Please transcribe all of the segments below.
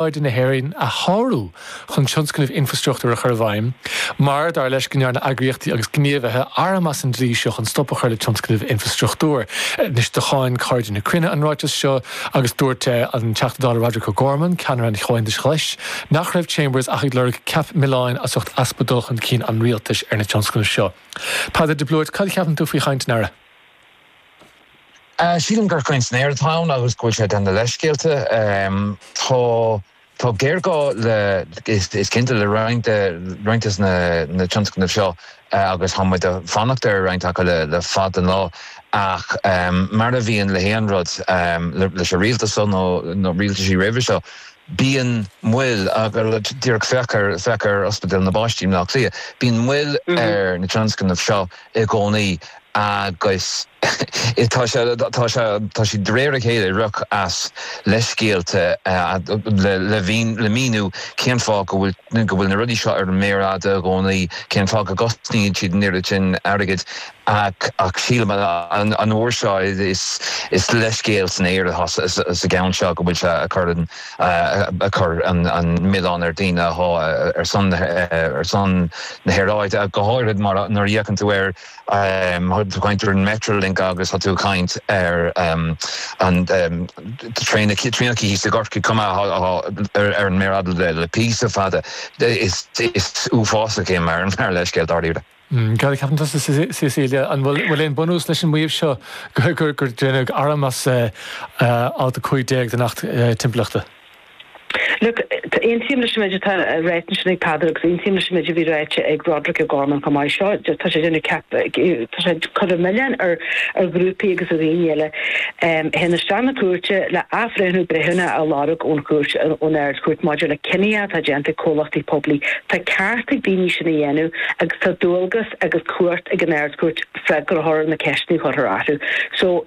aeráide na hÉireann a shárú chun tionscnaimh infreastruchtúir a chur i bhfeidhm, mar, dar leis, go ndearna eagraíochtaí agus gníomhaithe arm as an dlí seo chun stop a chur le tionscnaimh infreastruchtúir. Anois, do cháin Cairde na Cruinne an ráiteas seo agus dúirt an Teachta Dála Roderic O'Gorman, ceannaire an Chomhaontais Ghlais, nach raibh Chambers ach ag lorg ceap milleáin as ucht easpa dul chun cinn an Rialtais ar na tionscnaimh seo. Peadar de Blúit, Cad a cheapann tú faoi chaint an Aire? Sílim gur caint san aer atá ann agus go bhfuil sé ag déanamh leithscéalta. Tá géarghá le, is cinnte, le roinnt des na tionscnaimh seo agus tá muid a' fanacht ar roinnt acu le fada an lá ach mar a bhíonn le haon rud, leis an rialtas seo nó rialtaisí roimhe seo, Bíonn moill, díreach féach ar, féach ar Ospidéal na bPáistí i mBleá Cliath, bíonn moill ar na tionscnaimh seo i gcónaí agus tá sé, tá sé, tá siad de réir a chéile ag rith as leithscéalta le, le mhíniú, le míniú cén fáth go bhfuil, go bhfuil na rudaí seo ar an méar fhada i gcónaí, cén fáth go gcosnaíonn siad an oiread sin airgid. Ach ach sílim an uair seo is is leithscéal san aer atá sa gceann seo go bhfuil sé a chur an a chur an milleán ar daoine atá ar son ar son na haeráide go háirid mar nuair a fhéachann tú ar tá tú ag caint ar an Metrolink agus tá tú ag caint ar an traein traenacha thíos i gCorcaigh chomh maith atá ar ar an méar fhada le píosa fada is is uafásach é mar mar leithscéal dáiríre. Hm, cad a cheapann tusa Cecilia, an bhfuil aon bunús leis an maíomh seo gur deineadh arm as Alt 15 den Acht Timpeallachta? Look, aontaím leis an méid atá ráite ansin ag Peadar agus aontaím leis an méid a bhí ráite ag Roderic O'Gorman chomh maith. Seo, tá sé déanamh ceap, tá sé ag cur an milleáin ar ghrúpaí agus ar dhaoine eile a théann isteach na cúirte le athbhreithniú breithiúnach a lorg ón chúirt, ón Ard-Chúirt maidir le cinneadh atá déanta ag comhlachtaí poiblí. Tá ceart ag daoine sin a dhéanamh. agus tá dualgas agus cumhacht ag an Ard-Chúirt freagra a thabhairt ar na ceisteanna a chuirfear orthu so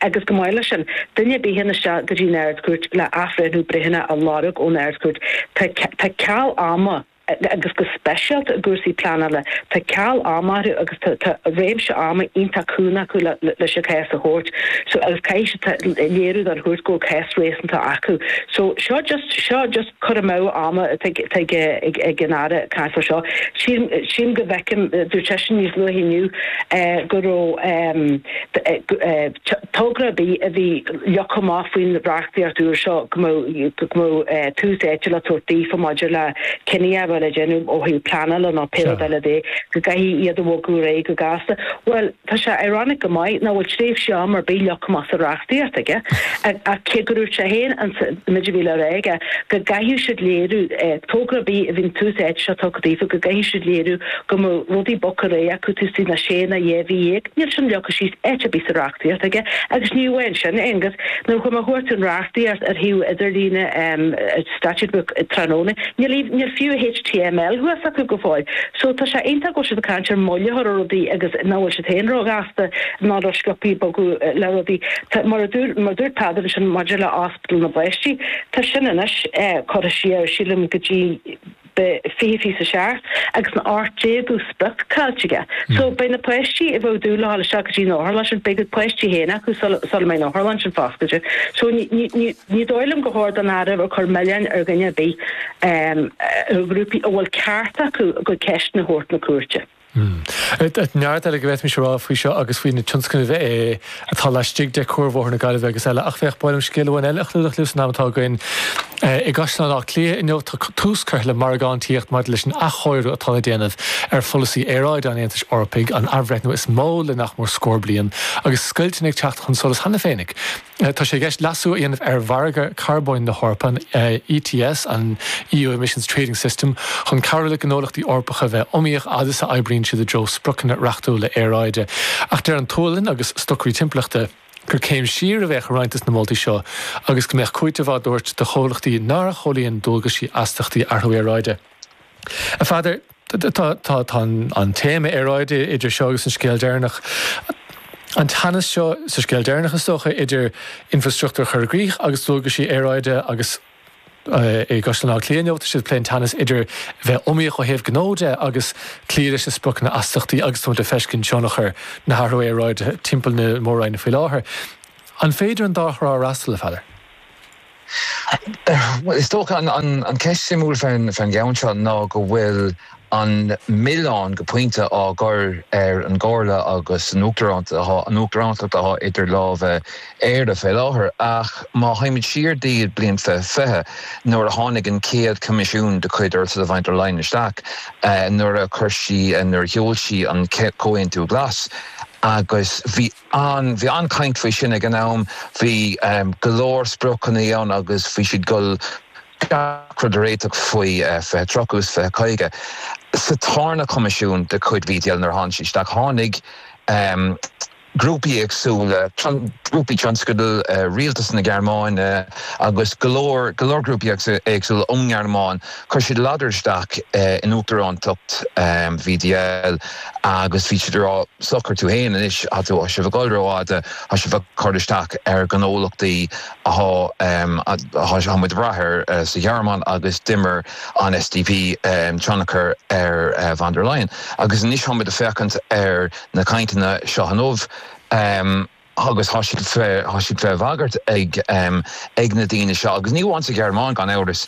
agus chomh maith leis sin, duine ar bith a théann isteach go dtí an Ard-Chúirt le athbhreithniú breithiúnach a lorg ón Ard-Chúirt tá ceal ama agus go speisialta i gcúrsaí pleanála tá ceal ama orthu agus tá réimse ama iontach cúng acu leis an chás a thabhairt so agus caithfidh siad léiriú don chúirt go bhfuil cás réasúnta acu so seo just cur amú ama atá ag an Aire ag caint air seo. Sílim go bhfeicim, dúirt seisean níos luaithe inniu go raibh togra ar bith a bhí leagtha amach faoin reachtaíocht úr seo go mbeadh tús áite le tabhairt daofa maidir le cinneadh a bheith le déanamh ó thaobh pleanála nó pé rud eile de go gcaithfí iad a bhogadh ar aghaidh go gasta. Bhuel, Tá sé ironic go maith nach bhfuil tréimhse ama ar bith leagtha amach sa reachtaíocht aige ach cé gur dhúirt sé féin ins an mhéid a bhí le rá aige go gcaithfeadh siad léiriú, togra ar bith a bhíonn tús áite seo tugtha daofa, go gcaithfeadh siad léiriú go mbeadh rudaí bogtha réidh acu taobh istigh de na sé nó dhá mhí dhéag, níl sin leagtha síos áit ar bith sa reachtaíocht aige agus ní amháin sin, agus, nuair a chuartaigh mé an reachtaíocht ar shuíomh idirlíne an Statute Book tráthnóna. Níl fiú, níl fiú html thuas acu go fóill. So tá sé iontach go bhfuil siad ag caint ar moill a chur ar rudaí agus nach bhfuil siad féin ró ghasta ná ró sciobtha ag bogadh le rudaí. Tá, mar a dúr, mar a dúirt Peadar ansin maidir le Ospidéal na bPáistí, tá sin anois curtha siar, sílim, go dtí, fiche fiche a seacht agus an t-ochtú déagú sprioc caillte aige so beidh na páistí a bhí ag dúil le dhul isteach go dtí an otharlann sin beidh a gcuid páistí féin acu sula sula mbeidh an otharlann sin foscailte so ní ní ní ní dóigh liom gur chóir don Aire bheith ag cur milleáin ar dhuine ar bith nó ar ghrúpaí a bhfuil ceart acu a gcuid ceisteanna a thabhairt na cúirte. Hm. Neart eile go bhféadfaimis a rá faoi seo agus faoi na tionscnaimh atá laistigh de Chuarbhóthar na Gaillimhe agus eile ach ba mhaith liom scéal amháin eile a chlúdach libh san am atá againn. I gCaisleán Átha Cliath inniu tá tús curtha le margáintíocht maidir leis an athchóiriú atá le déanamh ar pholasaí aeráide an Aontais Eorpaigh, an athbhreithniú is mó le nach mór scór bliain agus scoilteanna ag teacht chun solais cheana féin ag. Tá sé i gceist leasú a dhéanamh ar mhargadh carbóin na hEorpa, an ETS, an EU Emissions Trading System, chun cabhrú le gnólachtaí Eorpacha a bheith iomaíoch fhad is a oibríonn siad i dtreo spriocanna reachtúla aeráide. Ach deir an tSualainn agus stocairí timpeallachta, gur céim siar a bheadh i roinnt de na moltaí seo agus go mbeadh cúiteamh á dtabhairt do chomhlachtaí nár chomhlíon dualgaisí astachtaí athrú aeráide. A Pheadair, Tá an téama aeráide idir seo agus an scéal deireanach, an teannas seo sa scéal deireanach is dócha idir infreastruchtúr a chur i gcrích agus dualgaisí aeráide agus i gCaisleán Átha Cliath inniu tá siad ag plé an teannas idir bheith iomaíoch ó thaobh gnó de agus cloí leis na spriocanna astachtaí agus tá muid ag feiscint tionchar na hathrú aeráide timpeall na mór-roinne faoi láthair. An féidir an dá thrá a fhreastal, a Pheadair? Bhuel, is dócha an cheist shuimiúil faoin gceann seo ná go bhfuil an milleán, go pointe, á gcur ar an gComhairle agus an Uachtarántacht atá idir lámha ag Éire fé láthair. Ach má théimid siar go dtí an bliain fiche fiche, nuair a tháinig an chéad Choimisiún de chuid Ursula von der Leyen isteach, nuair a chuir sí, nuair a sheol sí an Comhaontú Glas agus bhí ann. Bhí an-chaint faoi sin ag an am. Bhí go leor spriocannaí ann agus bhí siad dul gach rud a réiteach faoi 20 30 is 20 50. Sa tarna coimisiún de chuid VDL nuair a tháinig sí isteach tháinig grúpaí éagsúla, grúpaí tionscail Rialtas na Gearmáine agus go leor go leor grúpaí éagsúla ón nGearmáin. Chuir siad ladar isteach in Uachtarántacht VDL agus bhí siad ag rá, socair tú fhéin anois, tá tú, tá sibh ag dul rófhada, tá sibh ag cur isteach ar ghnólachtaí atá, tá muid ag brath air sa Ghearmáin agus d'imir an SDP tionchar ar von der Leyen agus anois táimid ag féachaint ar na cainteanna seo inniu. agus thá siad fé, thá siad fé bhagairt ag, ag na daoine seo, agus ní amháin sa Ghearmáin gan amhras,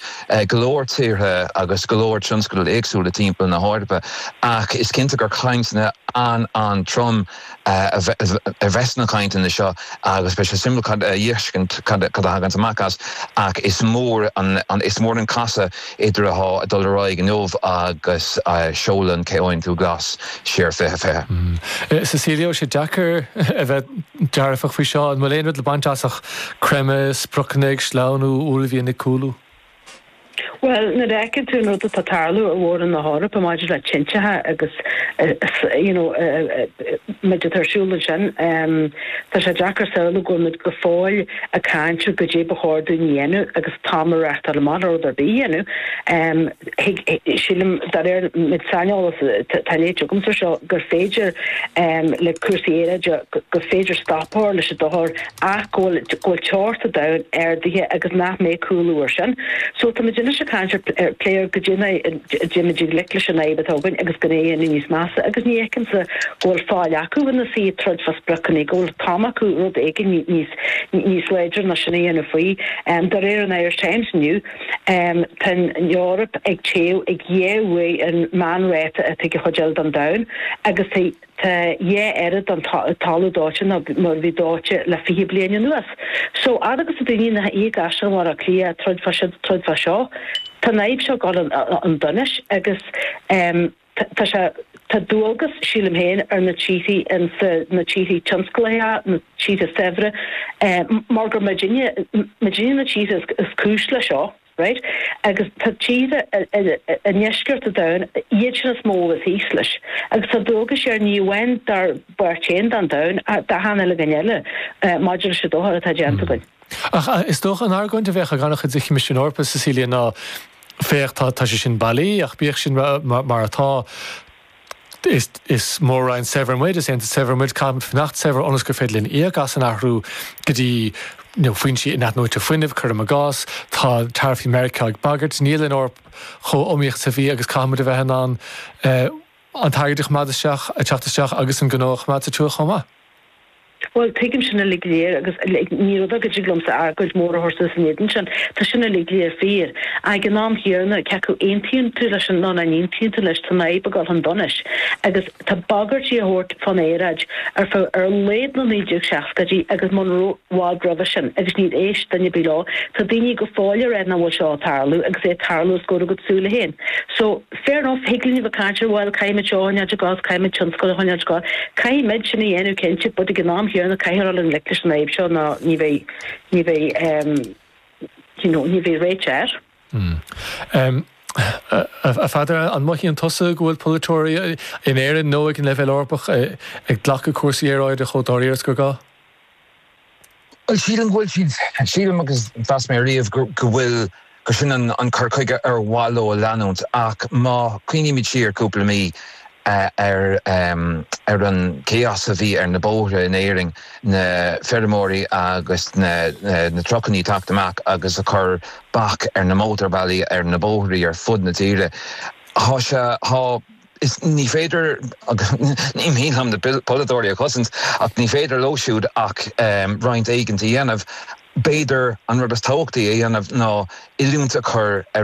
go leor tíortha agus go leor tionscadal éagsúla timpeall na hEorpa, ach is cinnte gur cainteanna an-an-trom a bheidh sna cainteanna seo agus beidh sé suimiúil a fheiscint cad a thaganns amach as ach is mór an, is mór an casadh idir athá ag dul ar aghaidh inniu agus seoladh an Comhaontú Glas, siar 20 20. Cecilia, Ó sé deacair a bheith dearfach faoi seo. An bhfuil aon rud le baint as ach creimeadh, spriocanna ag sleamhnú, uaillmhian ag cúlú? Bhuel, nuair a fheiceann tú an rud atá ag tarlú i mhór-roinn na hEorpa maidir le tinteacha agus you know an méid atá ar siúl ansin tá sé deacair samhlú go bhfuilmid go fóill ag caint ar goidé ba chóir dúinn a dhéanamh agus an t-am ag reáchtáil amach le rud ar bith a dhéanamh. Sílim, de réir an méid saineolais atá léite agamsa ar seo, gur féidir le cúrsaí aeráide, gur féidir stop a chur leis an dochar ach go bhfuil go bhfuil teocht an domhain ardaithe agus nach mbeidh cúlú ar sin. So, táimid anois ag caint ar, plé ar goidé mar, a dtéimid i ngleic leis an fhadhb atá againn agus gan é a dhéanamh níos measa agus ní fheicimse go bhfuil faill acu ina suí ag troid fá spriocanna, go bhfuil an t-am acu rud éigin níos láidre ná sin a dhéanamh faoi. De réir an Irish Times inniu, tá an Eoraip ag téamh ag dhá uair an meánráta atá ag an chuid eile den domhan agus tá Tá dhá oiread den talamh dóite ná mar a bhí dóite le fiche bliain anuas. So fhad agus atá daoine ina suí i gCaisleán Bhaile Átha Cliath ag troid fá, troid fá seo. Tá an fhadhb seo ag goil chun donais agus tá sé, tá dualgas, sílim féin, ar na tíorthaí insa, na tíorthaí tionsclaithe, na tíortha saibhre, mar gur muidinne, muidinne na tíortha is cúis le seo. Right? Agus tá tíortha i ndeisceart an domhain, iad sin is mó is thíos leis. Agus tá dualgas orainn ní amháin dár bpáirt fhéin den domhan, d'achan uile cheann eile, maidir leis an dochar atá déanta againn. Ach is dócha an argóint a bheadh ag an-chuid den Choimisiún Eorpach, Cecilia, ná, féach, tá sé sin bailí, ach bíodh sin mar atá, Is is Mór-Roinn saibhir muid, is Aontas saibhir muid, caithfimid fanacht saibhir ionas gur féidir linn íoc as an athrú go dtí you know foinsí inathnuaite fuinnimh, cuirim i gcás. Tá taraifí Mheiriceá ag bagairt. Níl an Eoraip chomh iomaíoch is a bhí agus caithfimid a bheith in ann eh an t-airgead a choimeád isteach, a teacht isteach agus an gnó a choimeád sa tsiúl chomh maith. Bhuel, tuigim sin uilig go léir agus ní rud ar go dtig liomsa argóint mhór a chur suas in éadan sin. Tá sin uilig go léir fíor. Ag an am chéanna, cé acu aontaíonn tú leis sin nó nach n-aontaíonn tú leis, tá an fhadhb ag dul chun donais. Agus tá bagairtí á thabhairt fán aeráid ar feadh, ar laghad na 1960idí agus muna raibh, i bhfad roimhe sin. Agus níor éist duine ar bith leo. Tá daoine go fóill a rá nach bhfuil seo ag tarlú agus é ag tarlú, os comhair a gcuid súile féin. So. Fair enough, thig linn a bheith cainteach, bhuel, caithfimid seo a choinneáil ag dul, caithfimid tionscail a choinneáil ag dul. Caithfimid sin a dhéanamh cinnte but ag an am chéanna caithfear dul i ngleic leis an fhadhb seo ná ní bheidh, ní bheidh ehm you know ní bheidh réiteach air. Ehm, a Pheadair, an mothaíonn tusa go bhfuil polaiteoirí, in Éirinn nó ag an leibhéal Eorpach, ag glacadh cúrsaí aeráide chomh dáiríre is gur gá? Bhuel, sílim go bhfuil siad, sílim agus mheas mé ariamh go bhfuil, gurb sin an cur chuige ar mhaith leo a leanúint ach má chuimhnímid siar cúpla mí ar an chaos a bhí ar na bóithre in Éirinn, na feirmeoirí agus na trucannaí ag teacht amach agus ag cur bac ar na mótarbhealaí, ar na bóithrí ar fud na tíre, tá sé, tá. Is ní féidir, agus ní maith liom na polaiteoirí a chosaint, ach ní féidir leo siúd ach roinnt éigint a dhéanamh. B'fhéidir an rud is tábhachtaí a dhéanamh ná oiliúint a chur ar